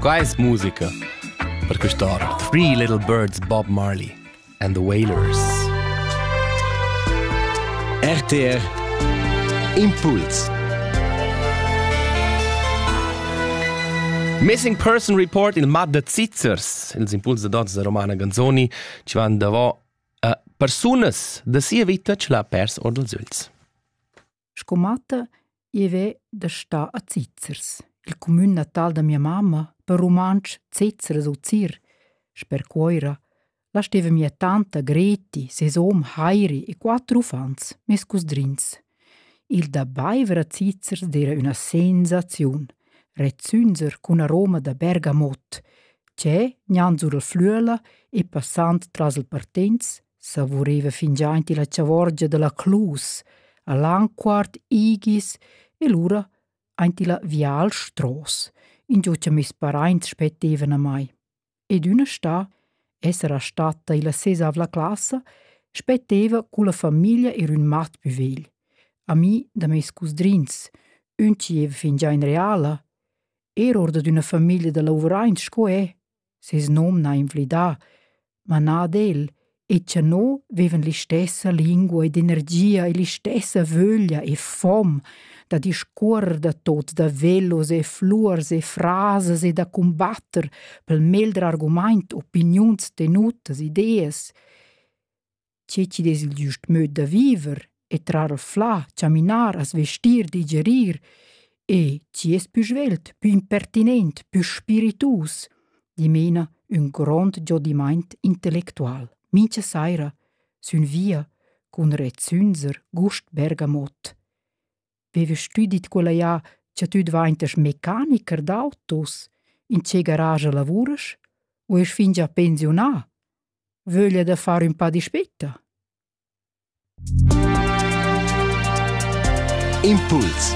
Quai es musica per quist'ora. Three Little Birds Bob Marley and the Wailers. RTR Impuls Missing Person Report il mat da Zizzers, ils impuls da dots da Romana Ganzoni, ci van davò uh, persunas da sia vita ce l'ha pers or dals üls. Sco matta i veva da star a Zizers, il cumün natal da mia mamma, per rumantsch Zezeres u Zir. Sper Cuoira la steva mia tanta Greti, ses hom Heiri e quatter uffants, mes cusdrins. Il da baiver a Zizers d'era üna sensaziun, rezzünder cun aroma da Bergamot, che, gnanc sur la flüela e passand tras il Partenz, savuriva fingià aint illa chavorgia da la Clus, a Lanquart, Igis e lura aint illa Vial Stross, ingio cha meis paraints spettevan a mai. Ed üna stà, essera statta illa sesavla classa, spetteva culla famiglia ir ün mat pü vegl, ami da meis cusdrins, ün chi eva fingià in reala, er or dad üna famiglia da lavuraints sco e. ses nom n'ha inflidà, ma na ad el, e cha no vivan l'istessa lingua ed energia e l'istessa vöglia e fom da discuorrer da tot da velos e fluors e frasas e da cumbatter pel meglder argumaint opiniuns tenutas, ideas. tge chi'd es il giust möd da viver e trar flà, chaminar, as vestir, digerir e chi es pü svelt, pü impertinent, pü spiritus, dimena ün grond giodimaint intellectual. Mincha saira sün via cun rezzünzer Gust Bergamot. Vevast tü dit quella ja cha tü dvaintas mecanicher d'autos? In che garage lavuras? U esch fingià pensiunà? Vöglia da far ün pa dispeta? Impuls